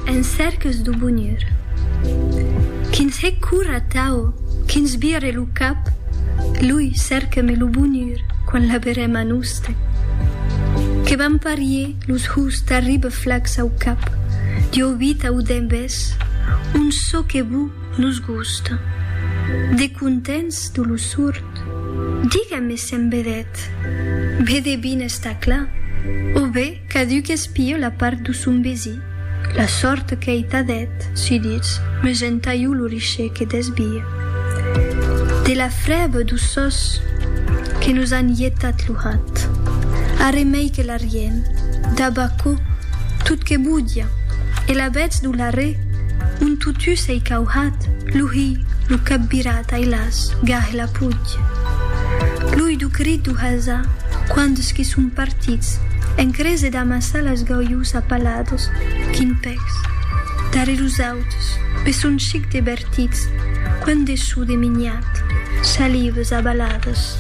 En cèrques do bonur. Quins hè cor atau quins vire lo cap lui cèrqueme lo bonur quan l'aberem a noste que vam parier los hous tarribe flacs au cap dieu vita o dembes un çò que vou nos gosta de contents do lo surt digame se'n vedèt be de bines tacla o be Caduc espio la part d'u son besi. La sòrt qu'ei ta dèt, su ditz, me gen taiu lo riche que desbie. De la frèba d'u sòs que nos an ietat lo hat. Arremei que l'arriem, dab aquò, tot que bodia, e la bètz d'u larrè, on totú s'ei cauhat, lo hi, lo cap virat, ai las, gah, e la. Puig. Plui du crit du Hazà, quands que son partits, en crese d'amassar las gaulhus a palados, quin pècs. Darrèr us autes, pe son chic de bertits, quant de sou de miniat, salives abalades.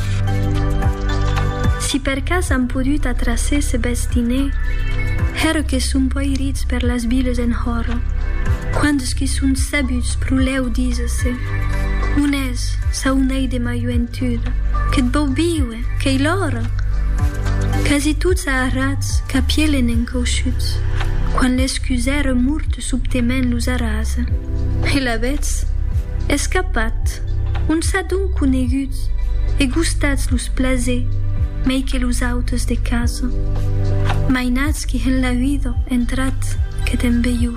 Si per cas an podut atraser ce bèth diner, hèr que son poirits per las viles enhòra, quands que son sabuts pro lèu díser-se, On es, saunei de ma joentud, que't vòu viure, qu'eilhòra? Quasi tots a arrats capielen encausuts, quan l'escusèr murt subtement los arrasa. E l'avètz? Escapat! On s'a donc coneguts e gustats los plaser mei que los autes de casa? Mainatz qu'i en la vida entrat que t'en veiu.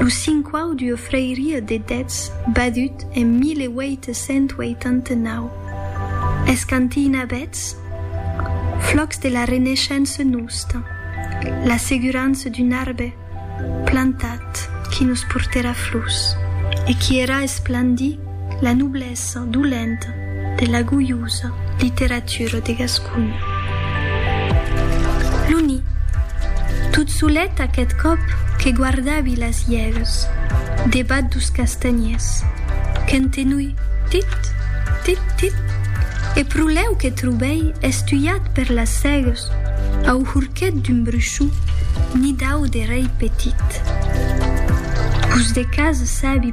Lo cinquau d'ua frairia de dètz badut en 1889. Es cantina bètz flòcs de la Reneishença nosta, la segurança d'un arbe plantat qui nos portèra flors e qui èra esplandit, La noblesa dolenta de la goiosa literatura de Gasconha. Lo ni. Tot solet aqueth còp que guardavi las iègues debat dos castanhiers, qu'entenui tit, tit, tit, e pro lèu que trobèi estuiat per las sègues au horquet d'un bruchon ni dau de rei petit. Pus de cas sabi